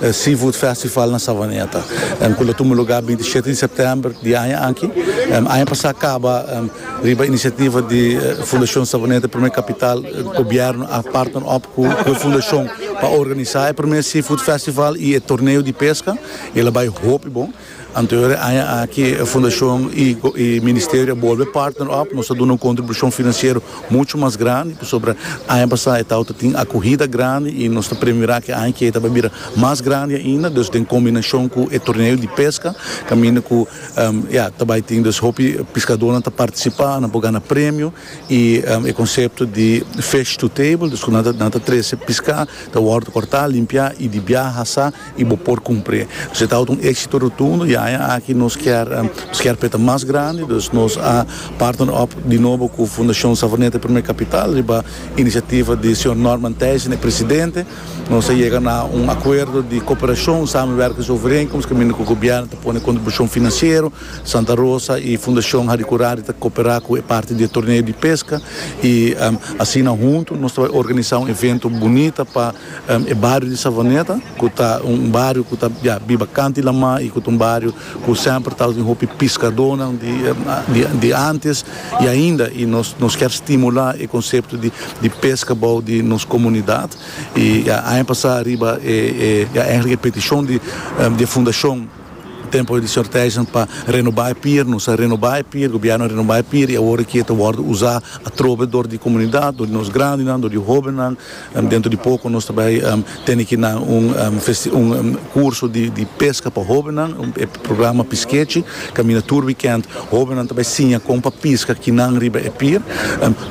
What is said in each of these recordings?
e Seafood Festival na Savaneta ku lo tuma lugá binti shete di sèptèmber di aña aki. Aña pasá kaba riba inisiativa di Fundashon Savaneta Promé Kapital gobièrnu a partner op ku e fundashon pa organisá e promé Seafood Festival i e torneo di peska. El a bai hopi bon. Anterior e aña aki e fundashon y ministerio a bolbe partner op, nos a duna un contribucion financiero mucho mas grandi, pasobra aña pasa e tawata tin acuhida grandi y nos ta premira cu e aña kiey ta bay bira mas grandi ainda, dus den combinacion cu e torneo di pesca caminda cu ya ta bay tin, dus hopi piscadornan ta participa, nan por gana premio. y e concepto di fish to table dus cu nan ta trece pisca ta wordo corta limpia y di biaha hasa y bo por cumpri dus e ta wordo un exito rotundo y aña aki nos kier nos kier peta mas grandi dus nos a partner up di nobo cu Fundacion Savaneta y Primer Capital riba iniciativa di señor Norman Thijssen e presidente nos a yega na un acuerdo di cooperacion samenwerkings overeenkomst caminda cu gobierno ta pone contribucion financiero Santa Rosa y Fundacion Haricurari ta cooperá cu e parti di e torneo di pesca y asina hunto nos ta bay organizá un evento bunita pa e bario di Savaneta cu ta un bario cu ta ya biba canti lamá y cu ta un bario cu semper ta tin hopi piscadónan di antes y ainda y nos kier stimulá e concepto di pesca bou di nos comunidad y ya aña pasá riba e ya eigenlijk e peticion di e fundacion. Tempo di sorteisnan pa renoba e pier, nos a renoba e pier, gobièrnu a renoba e pier i awor e kier ta wòrdu usá atrobe dor di komunidat, dor di nos grandinan, dor di hóbennan. Dentro di poko nos ta bai tene ki nan un un kurso di peska pa hóbennan, e programa Piskechi, kaminda tur wikènt hóbennan ta bai siña kon pa piska kinan riba e pier.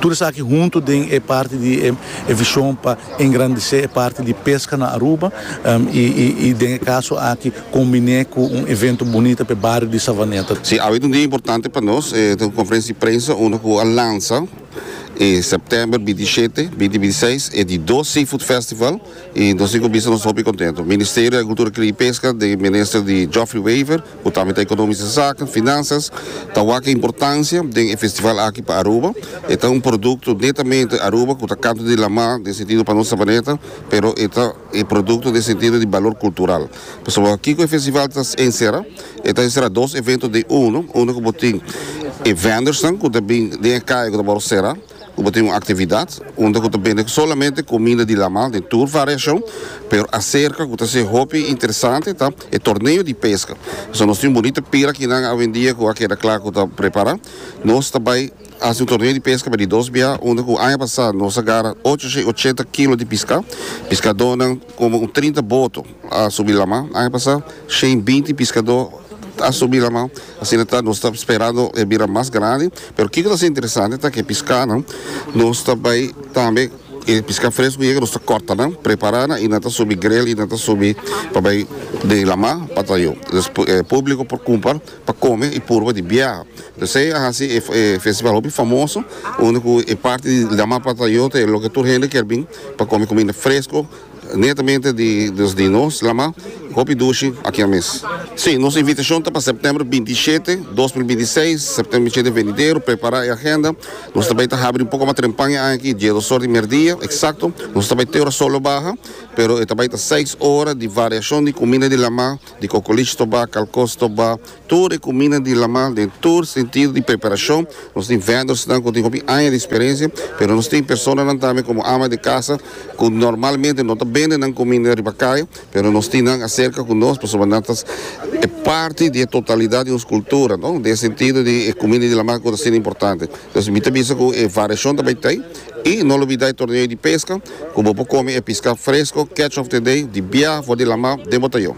Tur esaki huntu den e parti di e vishon pa. Engrandisé e parti di peska na Aruba i den e kaso aki kombiné ku un evento bunita pa e bario di Savaneta. Sí, awe ta un dia importante pa nos, e ta un konferensia di prensa unda ku a lansa e sèptèmber binti shete, binti binti seis e di dos Seafood Festival i nos tin ku bisa nos hopi kontentu. Ministerio di Agrikultura Kria i Peska den minister di Geoffrey Wever, Cu tambe ta economische zaken, finanzas, ta wak e importancia den e festival aki pa Aruba. E ta un producto netamente Aruba cu ta canto di lama den sentido pa nos Sabaneta, pero e ta e producto den sentido di balor cultural. Pasobra kico e festival ta encera? E ta encera dos evento den uno, uno cu bo tin e vendors nan cu ta bin den e caye cu ta wor cera, ku bo tin un aktividat unda ku ta bende solamente kuminda di laman den tur variashon, pero aserka ku ta ser hopi interesante ta e torneo di peska. So nos tin un bunita pira kinan awendia ku a keda kla ku ta prepara. Nos ta bai hasi un torneo di peska bai di dos bia unda ku aña pasa nos a gara ocho shei ochenta kilo di piska, piskadónan komo un trinta boto. a subi lama. Aña pasá shen binti piskadó a subi lama, asina ta nos ta sperando e bira mas grandi, pero kiko ta ser interesante ta ku e piskánan nos ta bai tambe e piská fresku ku yega nos ta kòrta nan, prepará nan i nan ta subi grel i nan ta subi pa bai den lama pa ta yu. Entonces e públiko por kumpa pa kome i purba di biaha. Entonces esei a hasi e festival hopi famoso unda ku e parti di lama pa ta yu ta e loke tur hende kier bin pa kome kuminda fresku. Netamente di nos di nos lama hopi dushi aki a mes. Si, nos invitashon ta pa sèptèmber binti i shete, dos mil binti i seis, sèptèmber i shete venidero. Prepará e agenda. Nos ta bai ta habri un poko mas trempan e aña aki, diedoshor di mierdia eksakto. Nos ta bai te ora sòl lo baha, pero e ta bai ta seis ora di variashon di kuminda di lama. Di kokolish to ba, kalkos to ba, tur e kuminda di laman den tur sentido di preparashon. Nos tin vendors-nan ku tin hopi aña di eksperensia, pero nos tin personanan tambe komo ama di kasa ku normalmente no ta bende nan kuminda riba kaya, pero nos tin nan aserka ku nos pasobra nan ta e parti di e totalidat di nos kultura, no? Den e sentido di e kuminda di laman ku ta hasinan importante. Entonces mi ta bisa ku e variashon ta bai ta ei. I no lo bida e torneo di pesca cu bo por come e pisca fresco catch of the day di biaha for di lama den botayon.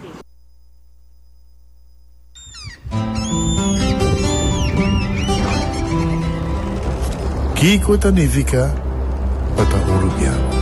Kico ta nifica pa ta Uruguiano?